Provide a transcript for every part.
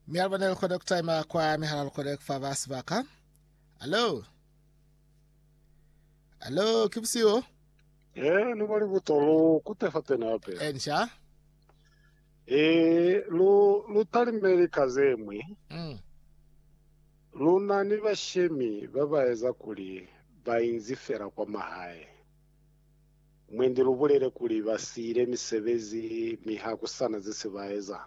Mialaba ne likona kutaima kwa mihala likona kufa ba sibaka. Hello. Hello, ke bosiu. Eh, no bali botolo kutefa tena pe. Ensha. Eh, lu lu talimeli kazemwe. Mm. Luna ni bashemi ba ba eza kuli ba inzi fela kwa mahae. Mwendi lubulele kuli ba siile misebezi mi ha ku sa na ze se ba eza.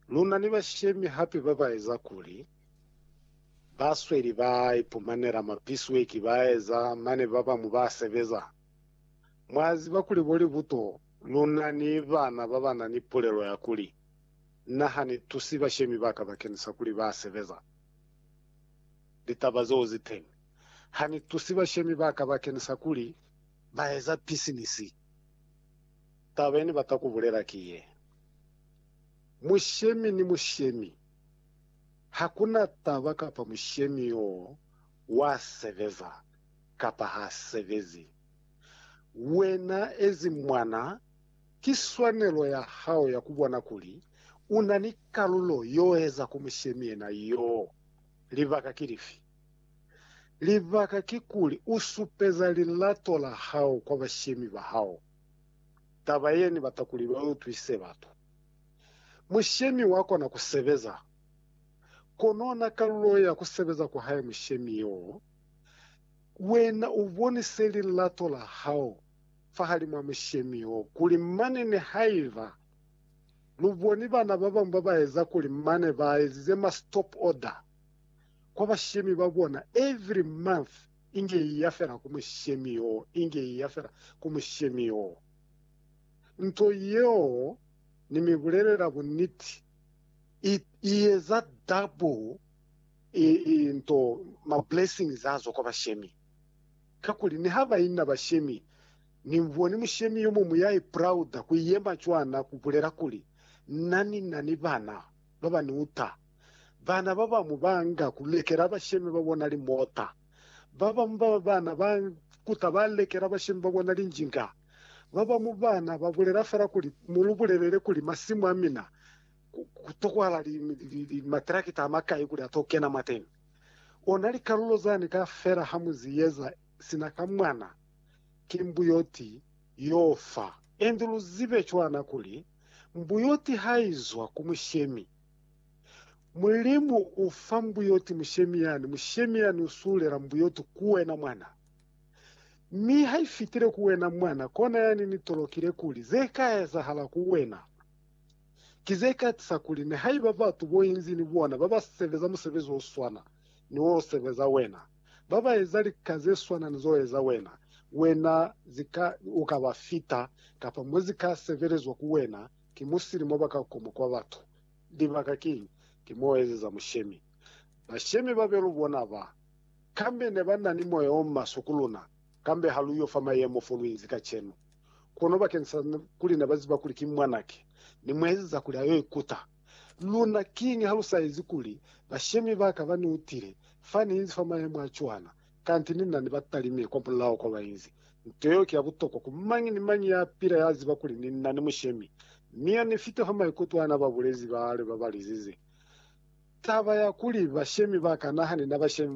Lu na ni bashemi hape ba ba eza kuli ba sweli ba ipumanela mapisweki ba eza mane ba bañwi ba sebeza. Mwa ziba kuli bo Libuto lu na ni bana ba ba na ni pulelo ya kuli, Na ha ni tusi bashemi ba ka bakeni sa kuli ba sebeza. litaba zeo ziteñi. Hanitusi bashemi baka bakenisa kuli baeza pisinisi, taba yenibata kubulela ki ye, Mushemi ni mushemi, hakuna taba kapa mushemi yoo wa sebeza kapa ha sebezi. Wena ezi mwana, ki swanelo ya hao ya kubona kuli una ni kalulo yoeza ku mushemi yena yoo. Libaka ki lifi? Libaka kikuli u supeza lilato la hao kwa bashemi ba hao. Taba ye ni bata kuli ba utwisize batu. Mushemi wa kona ku sebeza, kono na kalulo ya ku sebeza kwa hae mushemi yo, wena u bonise lilato la hao fahalimw'a mushemi yo kuli mane nihaiba Lu boni bana ba bañwi ba ba eza kuli mane ba ezize ma stop order kwa bashemi ba bona every month inge iya fela ku mushemi yo, inge iya fela ku mushemi yo. Nto yeo ni mi bulelela buniti i, i eza double i, i nto ma blessings azo kwa bashemi. Kakuli niha ba ina bashemi Nimboni mushemi yomuñwi yaipulauda kuyema cwana kubulela kuli, Na ni na ni bana babaniuta. Bana babamu baanga kulekela bashemi babona limota. Babamu ba bana ba kuta balekela bashemi babona linjinga. Babamu bana babulela fela kuli, Mulubulelele kuli masimu amina kutokwala matrakita amakai kuli atokena mwateni. Ona likalulo zani kafela hamuzieza sina ka mwana, ki mbuyoti yo fa. Inze lu zibe cwana kuli, mbuyoti ha i zwa ku mushemi, Mulimu u fa mbuyoti mushemi yani, mushemi yani u sulela mbuyoti ku wena mwana. Mi ha i fitile ku wena mwana, kona yani ni tolokile kuli ze ka ezahala ku wena ki ze ka tisa kuli nihaiba batu bo inzi ni bona ba ba sebeza musebezi o swana ni wo u sebeza wena, Ba ba eza lika ze swana ni z'o eza wena, wena zi ka, u ka ba fita, kapa mo zi ka sebelezwa ku wena ki musili mo ba ka koma kwa batu. Libaka kiñi? Ki mo u ezeza mushemi. Bashemi ba be lu bona ba, kambe ne ba na ni moya o maswe ku luna, kambe ha lu yo fa mayemo fo lu inzi kacenu. Kono bakeni sa kuli ne ba ziba kuli ki mwanaki, ni mu ezeza kuli a yo ikuta. Luna, kiñi ha lu sa ezi kuli bashemi ba ka ba ni utile fa ni inzi fa mayemo a cwana kanti ni na ni ba talime kwa mulaho kwa ba inzi? Nto yeo ki ya butokwa ku mañi ni mañi ya pila ya ziba kuli ni na ni mushemi. Mi ya ni fita fa maikuto a na ba bulezi ba lwe ba ba lizize taba ya kuli bashemi ba ka naha ni na bashemi ba